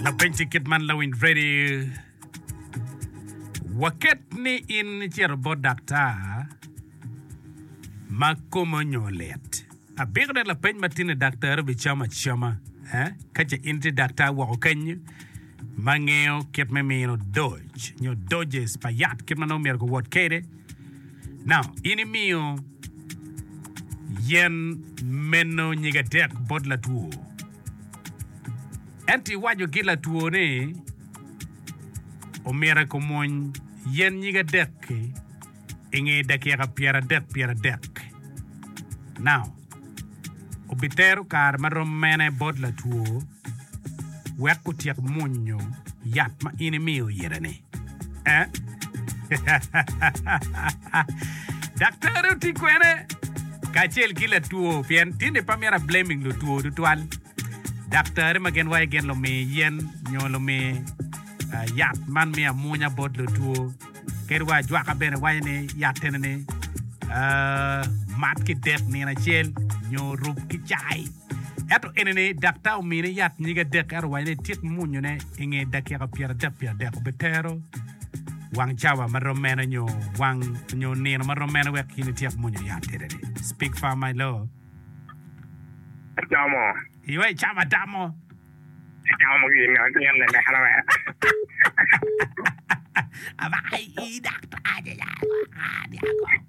Lapenc i kit man lawiny Freddy, waket ni in icito bot daktar ma kome onyo lit, abiko ne lapeny ma tini daktari obicamo acama eh? Ka ce in tye daktar woko kenyo ma ngeyo kit me mino doj nyo doses pa yat kit ma nongo myero kiwot kede. Now, in imiyo yen meno nyige adek bot latwo. Ento iwaco ki latwo ni omyero kumwony yen nyig adek-ki i nge dakika pyeradek pyeradek. Now, obitero kare ma rom mene bot latwo wek otyek mwonyo yat ma in imiyo ite-ni? Daktari oti kwene kacel ki latwo pien tinde pe myero ablaming lutwo tutwal. Daktari ma gin waci gin lumi yen nyo lumi yat man miyo amunya bot lutwo. Kadi wa ajwaka bene waco ni yat eni ni mat ki dek nino acel nyo rub ki cai. Ento enini daktar omine yat nyig adek ento owaco ni etyek munyone i nge dakika pyeradek pye adek. Obitero wang cawa ma rom mene nyo wang nyo nino ma rom mene wek in ityek munyo yat enini? Speak far my lord. Adamo. Yoo icamo adamo. Acamo gin ma gin ni meno be. Aba i daktar aye ya.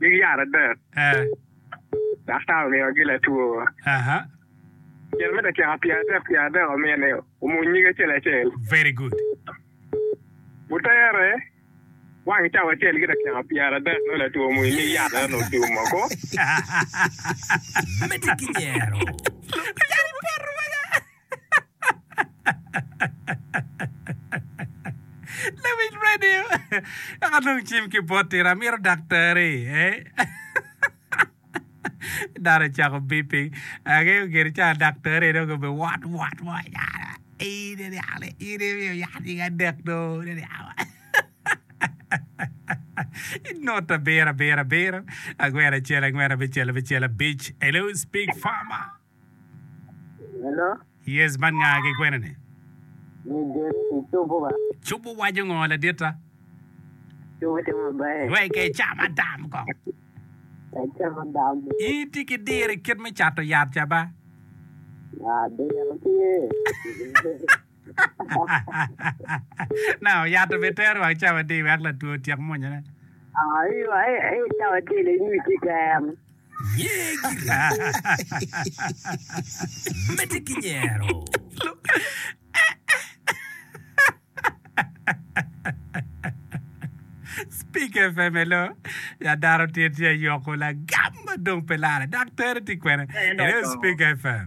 nyig yat adek. Daktar omiyogi latwo. Myero me dakika pyer adek pyer adek omiyo ni omuny nyig acel acel. Otere wang cawa acel ki dakika pyer adek nongo latwo omuny nyig yat ento nongo ocung moko. Lawic radio dok adong cim ki bot tira amito daktari eh dano ocako beeping angeyo gire ca daktari dong obe wot wot mo ecalo ii ne niang ni in imiyo yat nying adek do ne niang inut abiro abiro abiro angwen acel angwen abicel abicel abic hello speak farmer. Hello. Yes man nga ki kwene ni? Midit i cubu ka. Cubu waco ngo laditta? Cubu tye maber. Wek e cam adam kong. E cam adam. In tye ki diro kit me cato yat ca ba? Diro tye. Nanga oyato bene tero wang cawa di wek latwo otyek mwonyone. Medde ki nyero. Speak FM elo ya dano tye tye yoko lagam ma dong pe lare dok tere tye kwene elo Speak FM.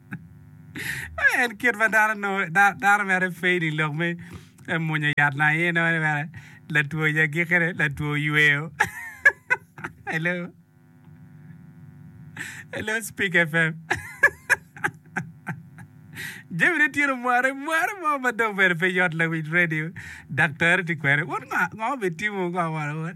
En kit ma dano nongo dano mere pe i dye lok me mwonyo yat nanga aye inongo ni mere latwo i agikine latwo oyweyo. Hello Hello Speak FM jamine tye ka mware mware mo ma dong bene pe yot lawic redio daktari tye kwede wun ngo ngo bene timo ngo wara wun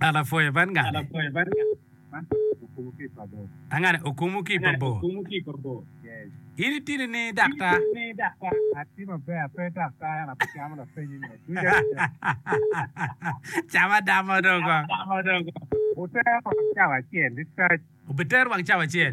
Alapwe bad ngane okumu ki i pa bor. In itini ni daktar. Cam adamo dong. Obitero wang cawa acel.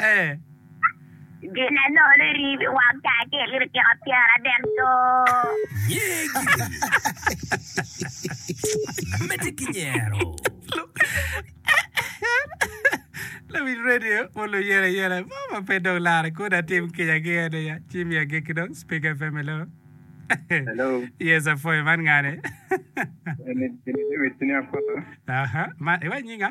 Ee. Gin anol iribo i wang taa ki i litika pyeradek doo. Nyegi. Medde ki nyero. Lawic radio mo luyela yela mo ma pe dong laro kun atim kica ki en aye ci miya gig ki dong Speaker FM hello Hello. yes apwoyo man ngane Eni David Senior Kota. aha man iwaco nyinga.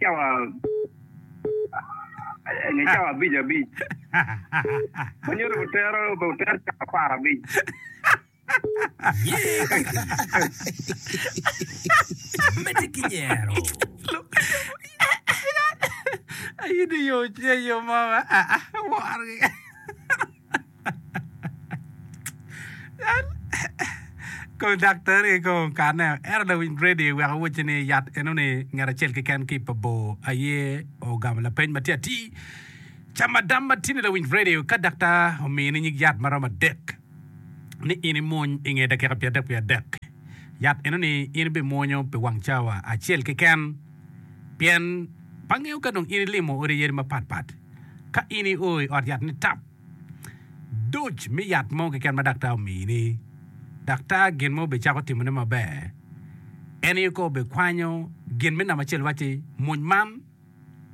cawa nge cawa abic abic ma nyuto butero butero cawa apar abic Mete ki nyero. Ayidi yo ce yo mo ma ah ah wor. Kong daktari kong okane o, ento dong winy Grady oweko owacci ni yat enoni ngat acel keken ki i pa bor aye ogamo lapeny ma tye atir. Cam adam ma tini lawiny Grady ka daktar omini nyig yat ma romo adek ni in imuny i nge dakika pyera adek wiye adek, yat enoni in ibimwonyo pi wang cawa acel keken. Pien pe angeyo ka dong in ilimo odi yadi mapat pat, ka in i o i ot yat nitap duc me yat mo keken ma daktar omiyi ni, daktar gin ma obicako timone maber en aye kong obikwanyo gin me namba acel wacci muny man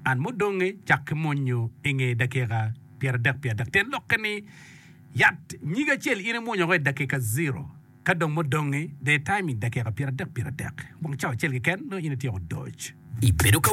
and mudonge cak ki munyo inge dakika pyera dek pye adek, tyen lokke ni yat nyige acel in imwunyo ko i dakika zero. Ka dong mudongi, daytime, dakika pyeradek pyeradek, wang cawa acel keken, nongo in ityeko doc. Ibedo ka.